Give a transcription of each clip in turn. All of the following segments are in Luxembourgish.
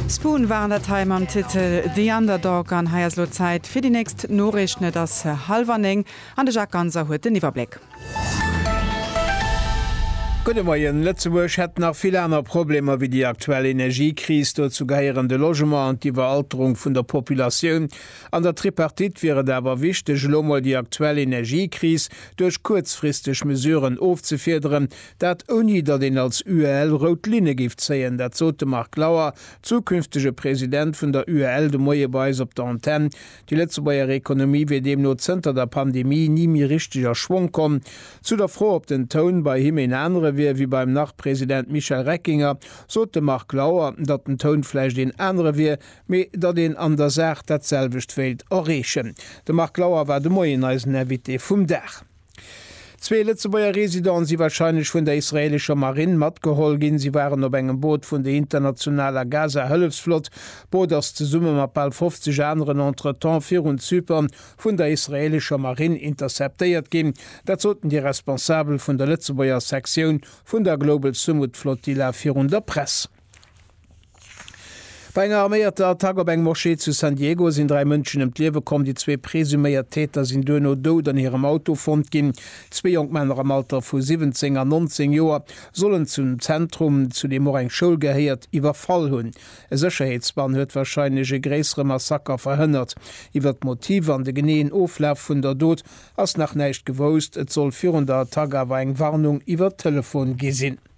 Spoon waren dat hei mam Titel The Underdog. An hei ass elo Zäit fir déi nächst Noriichten. Et ass hallwer néng an de Jacques Ganser huet den Iwwerbléck. Gudde Moien. Lëtzebuerg hätt nach vill aner Problemer wéi déi aktuell Energiekris. Dozou gehéieren de Logement an d'Iwweralterung vun der Populatioun. An der Tripartite wier et awer wichteg, elo mol déi aktuell Energiekris duerch kuerzfristeg Mesuren ofzefiederen, Dat ouni datt een als UEL rout Linne géif zéien. Dat sot de Marc Lauer, zukünftege President vun der UEL de Moie bei eis op der Antenn. Déi Lëtzebuerger Ekonomie wier deemno zënter der Pandemie ni méi richteg a Schwong komm. Zu der Fro, ob den Toun bei him een anere wier wéi beim Nach-President Michel Reckinger, sot de Marc Lauer, datt den Toun vläicht een anere wier, mee datt een an der Saach dat selwecht wéilt erreechen. De Marc Lauer war de Moien eisen Invité vum Dag. Zwee Lëtzebuerger Residenten si warscheinlech vun der israeelescher Marinn matgeholl ginn. Si waren op engem Boot vun der internationaler Gaza-Hëllefsflott. D'Boot ass zesumme mat bal 50 aneren entretemps virun Zypern vun der israeelescher Marinn interceptéiert ginn. Dat soten déi Responsabel vun der Lëtzebuerger Sektioun vun der Global Sumud Flotilla virun der Press. Bei enger arméierter Attack op eng Moschee zu San Diego sinn dräi Mënschen ëm d'Liewe komm. Déi zwee presuméiert Täter sinn duerno dout an hirem Auto fonnt ginn. Zwee jonk Männer am Alter vu 17 an 19 Joer sollen zum Zentrum, zu deem och eng Schoul gehéiert, iwwerfall hunn. E Sécherheetsbann huet warscheinlech e gréissere Massaker verhënnert. Iwwer d'Motiv an de geneeën Oflaf vun der Dot ass nach näischt gewousst. Et soll virun der Attack awer eng Warnung iwwer Telefon gi sinn.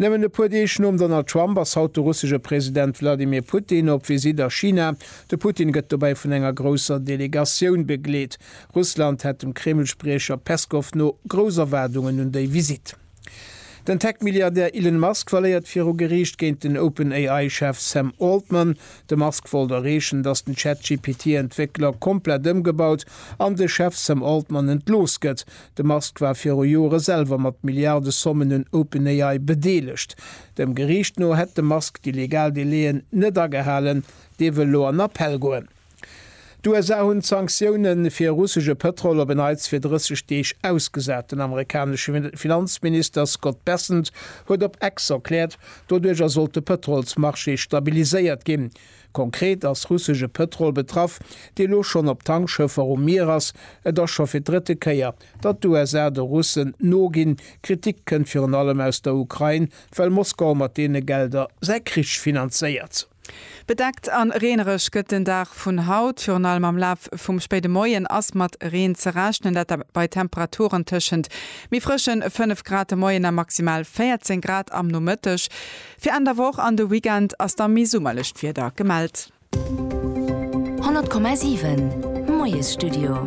Nëmmen e puer Deeg nom Donald Trump ass haut de russesche President Wladimir Putin op Visitt a China. De Putin gëtt dobäi vun enger grousser Delegatioun begleet. Russland hätt dem Kreml-Spriecher Peskow no grouss Erwaardungen un déi Visitt. Den Tech-Milliardär Elon Musk verléiert viru Geriicht géint den OpenAI-Chef Sam Altman. De Musk wollt erreechen, datt den Chat-GPT-Entwéckler komplett ëmgebaut an de Chef Sam Altman entlooss gëtt. De Musk war viru Jore selwer mat Milliardesommen un OpenAI bedeelegt. Dem Geriicht no hätt de Musk déi legal Délai'en net agehalen. Dee wëll elo an Appell goen. D'USA hunn d'Sanktioune fir russesche Pëtrol op en Neits fir 30 Deeg ausgesat. Den amerikanesche Finanzminister Scott Bessent huet op X erkläert, doduercher sollt de Pëtrolsmarché stabiliséiert ginn. Konkret ass russesche Pëtrol betraff, dee lo schonn op Tankschëffer um Mier ass. Et ass scho fir d'drëtte Kéier, datt d'USA de Russen noginn. Kritik kënnt virun allem aus der Ukrain, well Moskau mat deene Gelder säi Krich finanzéiert. Bedeckt an reenereg gëtt den Dag vun haut. Virun allem am Laf vum spéide Moien ass mat Reen ze rechnen, dat bei Temperaturen tëschent méi frëschen 5 Grad de Moien a maximal 14 Grad am Nomëtteg. Fir Enn der Woch an de Weekend ass da méi summerlecht Wieder gemellt. 100,7 Moiesstudio.